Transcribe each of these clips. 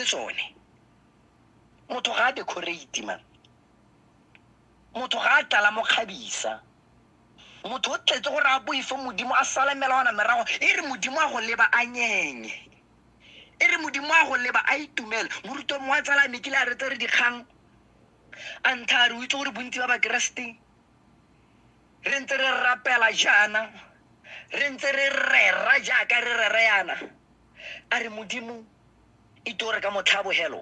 tsone motho ga a decorate man motho ga a tlala mo kgabisa motho o tletse gore a boife modimo a sala melawana merago e re modimo a go leba a nyenye e re modimo a go leba a itumele moruto mongwe a tsala mekile a retse re dikgang a ntlha a re o itse gore bontsi ba bakeresete re ntse re rapela jaana re ntse re rera jaaka re rera yana a re modimo e tore ka motlhabogelo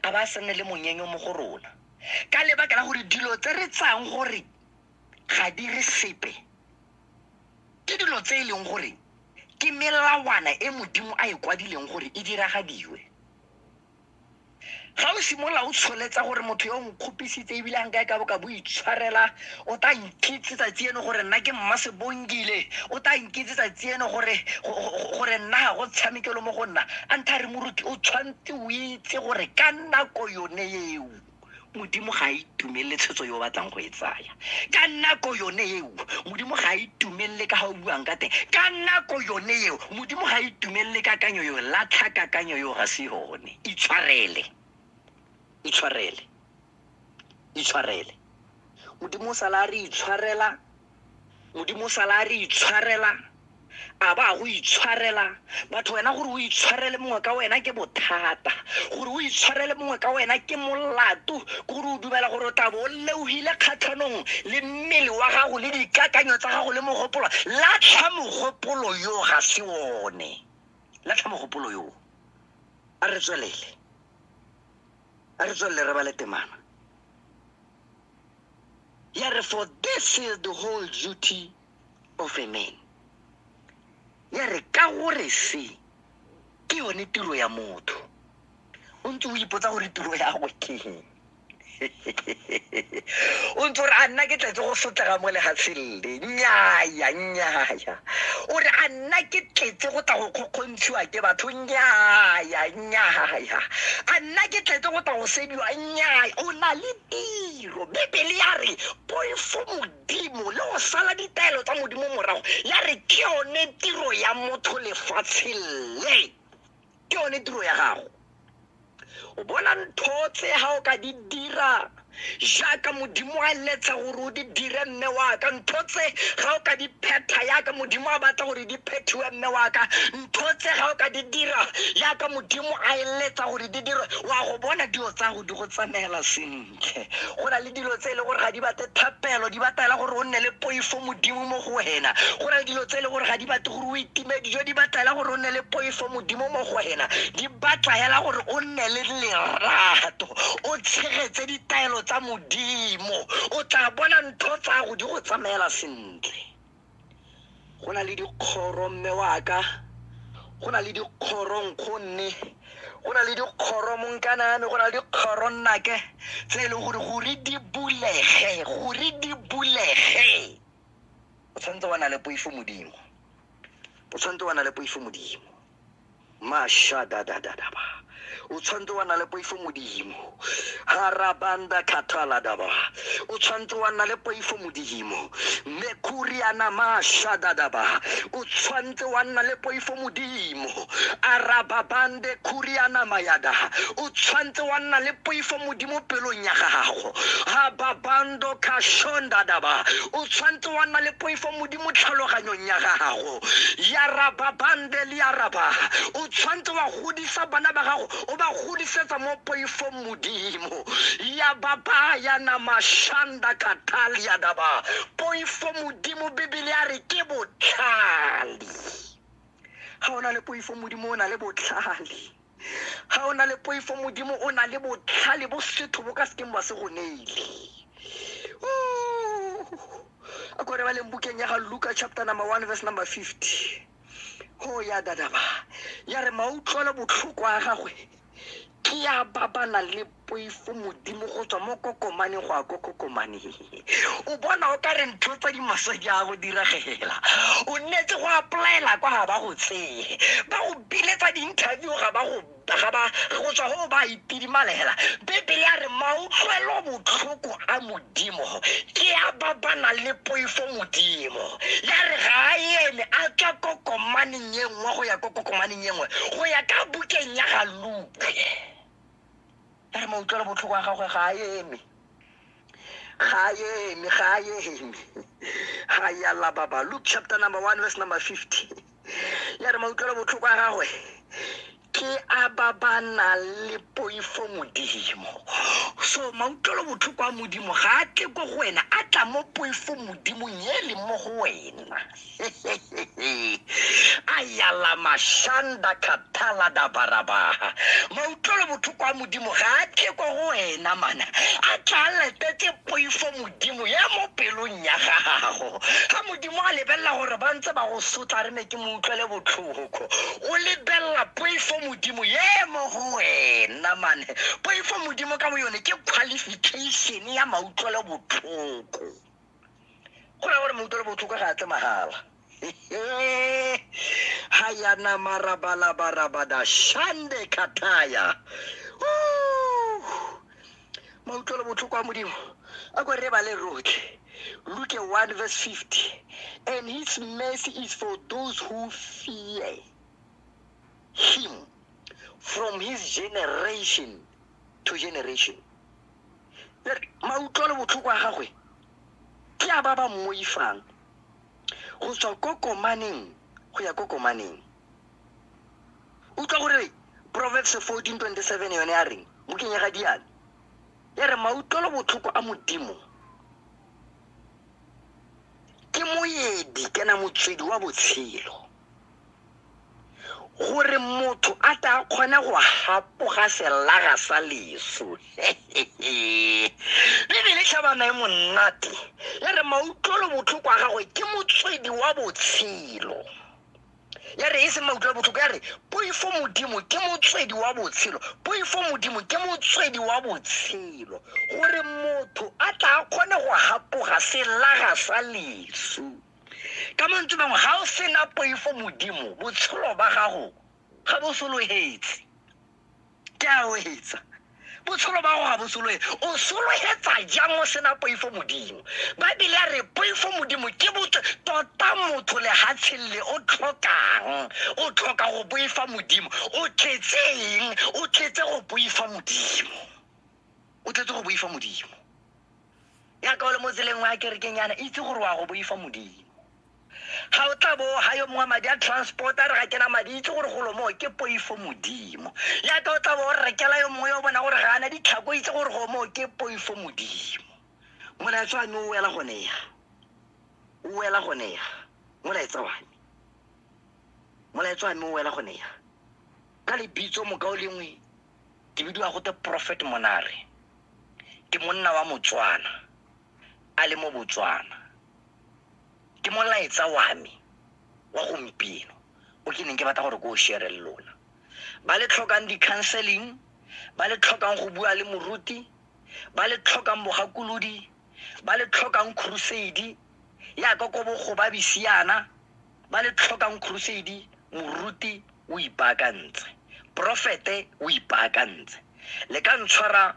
a ba se nne le monyenyo mo go rona ka lebaka la gore dilo tse re tsayang gore ga di re sepe ke dilo tse e leng gore ke melawana e modimo a e kwadileng gore e diragadiwe ga o simolola o tsholetsa gore motho yo o nkgopisitse ebile a nka e ka boka bo itshwarela o tla nkitse tsatsi eno gore nna ke mma sebongile o tla nkitse tsatsi eno gore go- go- go- gore nna ga go tshamekelo mo go nna a ntha re moruti o tshwanetse o itse gore ka nako yone eo modimo ga a itumelele tshwetso yo o batlang go e tsaya ka nako yone eo modimo ga a itumelele ka ga o buang ka teng ka nako yone eo modimo ga a itumelele kakanyo eo latlha kakanyo eo ga se yone itshwarele itshwarele itshwarele modimo o sala a re itshwarela modimo sala a re itshwarela a ba go itshwarela batho wena gore o itshwarele mongwe ka wena ke bothata gore o itshwarele mongwe ka wena ke molato ke gore o dumela gore o tla bo o leogile kgatlhanong le mmele wa gago le dikakanyo tsa gago le mogopolo latlha mogopolo yo ga se one latlha mogopolo yo a re tswelele a re tswelele re ba le temana ya re for this is the whole duty of a man ya re ka gore se ke yone tiro ya motho o ntse o ipotsa gore tiro ya gwe keng o ntse ore a nna ke tletse go sotlega mo legatsheng le nnyaya nnyaya o re a nna ke tletse go tla go kgokgontshiwa ke batho nnyaya nnyaya a nna ke tletse go tla go sediwa nnyaya o na le tiro bebele ya re poifo modimo le go sala ditaelo tsa modimo morago ya re ke yone tiro ya motho lefatsheng le ke yone tiro ya gago o bona ntho tse ga o ka di dira jaaka modimo a letla gore o di dire mme waka ntho tse ga o ka di phetha yaka modimo a batla gore di phethiwe mme waka ntho tse ga o ka di dira yaka modimo a eletsa gore di dirwe wa go bona dilo tsa go di go tsamaela sentle go na le dilo tse e le gore ga di bate thapelo di batela gore o nne le poifo modimo mo go wena go na le dilo tse e le gore ga di bate boitumedi jo di batla hela gore o nne le poifo modimo mo go wena di batla hela gore o nne le lerato o tshegetse ditaelo tsa modimo o tla bona ntho tsa go di go tsamaela sentle go na le dikgoro mme waka go na le dikgoro nkgonne go na le dikgoro monkaname go na le dikgoro nnake tse e leng gore gore di bulege gore di bulege o tshwanetse wa na le poifo modimo o tshwanetse wa na le poifo modimo mashadadadadaba o tshwanetse wa na le poifo modimo harabanda khathaladaba o tshwanetse wa na le poifo modimo mekuriana mashadadaba o tshwanetse wa nna le poifo modimo arababande kuriana mayada o tshwantse wa nna le poifo modimo pelong ya gago hababando kashondadaba o tshwantse wa nna le poifo modimo tlhaloganyong ya gago yarababande le yaraba o tshwantse wa godisa bana ba gago o ba godisetsa mo poifong modimo ya baba ya namashanda kataliadaba poifo modimo bibele ya re ke botlhale ga o na le poifo modimo o na le botlhale ga o na le poifo modimo o na le botlhale bo setho bo ka sekeng ba se go neile a kore ba leng bukeng ya ga luka chapter number one verse number fifty go ya dadaba ya re mautlwelo botlhoko a gagwe ke ya ba ba nang le poifo modimo go tswa mo kokomane go ya ko kokomane o bona o ka re ntho tsa dimasedi a go diragela o nnetse go applyela kwa ga ba go tseye ba go biletsa di-interview ga ba go ga ba go tswa go ba itidimalela bebele ya re mautlwelo botlhoko a modimo ke a ba ba nang le poifo modimo ya re ga a eme a tswa kokomaneng kokomaneng e nngwe go ya ko kokomaneng e nngwe go ya ka bukeng ya ga luke ya re mautlwelo botlhoko a gagwe ga a eme ga a eme ga a eme ga ya lababa luke chapter number one verse number fifty ya re mautlwelo botlhoko a gagwe ke a ba ba nang le poifo modimo so mautlwelo botlhoko a modimo ga a tle ko go wena a tla mo poifo modimong e leng mo go wena a yala mashanda khathala dabarabaha mautlwelo botlhoko a modimo ga a tle ko go wena mana a tla a letetse poifo modimo ya mo pelong ya gago ga modimo a lebelela gore ba ntse ba go sotla re ne ke mo utlwele botlhoko mogokgo o lebelela poifo modimo ye mo go wena mane poifo modimo ka bo yone ke qualification ya mautlwelo botlhoko go raya gore mautlwelo botlhoko ga a tle magala ha yana marabalabarabadaa shande kataya mautlwelo botlhoko a modimo a ko re bale rotlhe luke 1 verse 50 and his mercy is for those who fear him from his generation to generation mautlwelo botlhoko a gagwe ke a ba ba mmoifang go tswa ko komaneng go ya ko komaneng utlwa gore proverbs 1427 yone ya reng bukeng ya ga diane ya re mautlwelo botlhoko a modimo ke moedi kana motswedi wa botshelo gore motho a ta kgona go gapoga selaga sa leso bebele tlhabana e monate ya re mautlwelo botlhoko a gagwe ke motswedi wa botshelo ya re e seng mautlo botlhoko ya re poifo modimo ke motswedi wa botshelo poifo modimo ke motswedi wa botshelo gore motho a tla kgone go gapoga selaga sa lesu ka mantswe bangwe ga o sena poifo modimo botshelo ba gago ga bo sologetse ke a o etsa botshelo ba go ga bo sologe o sologetsa jang o sena poifo modimo baebile a re poifo modimo ke botse tota motho legatsheng le o tlhokang o tlhoka go boifa modimo o tletse eng o tletse go boifa modimo o tletse go boifa modimo yaka o le mo tseleng wa kerekeng yana itse gore wa go boifa modimo ga o tla bo ga yo mongwe madi a transport a re ga kena madi itse gore golo moo ke poifo modimo yaka o tla bo o rekela yo mongwe yo bona gore ga ana ditlhako itse gore go moo ke poifo modimo molaetsa wa me o wela gone ya o wela gone ya molaetsa wa me molaetsa wa me o wela gone ya ka lebitso mokao lengwe ke bidiwa gote prophet monare ke monna wa motswana a le mo Botswana. Ke molaetsa wa me wa gompieno o ke neng ke batla gore ke o share le lona ba le tlhokang di-counseling ba le tlhokang go bua le moruti ba le tlhokang bogakolodi ba le tlhokang crusade yaka ko bogobabi siana ba le tlhokang crusade moruti o ipaakantse profete o ipaakantse le ka ntshwara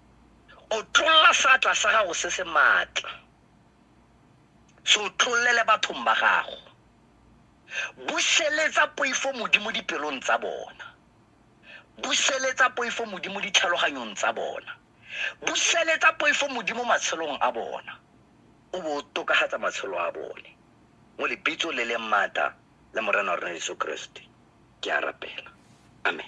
o tlolla seatla sa gago se se maatla se o tlollele bathong ba gago buseletsa poifo modimo dipelong tsa bona buseletsa poifo modimo ditlhaloganyong tsa bona buseletsa poifo modimo matshelong a bona o bo o tokagatsa matshelo a bone mo lebitso le leng maata la morena wa rona yesu keresete ke a rapela amen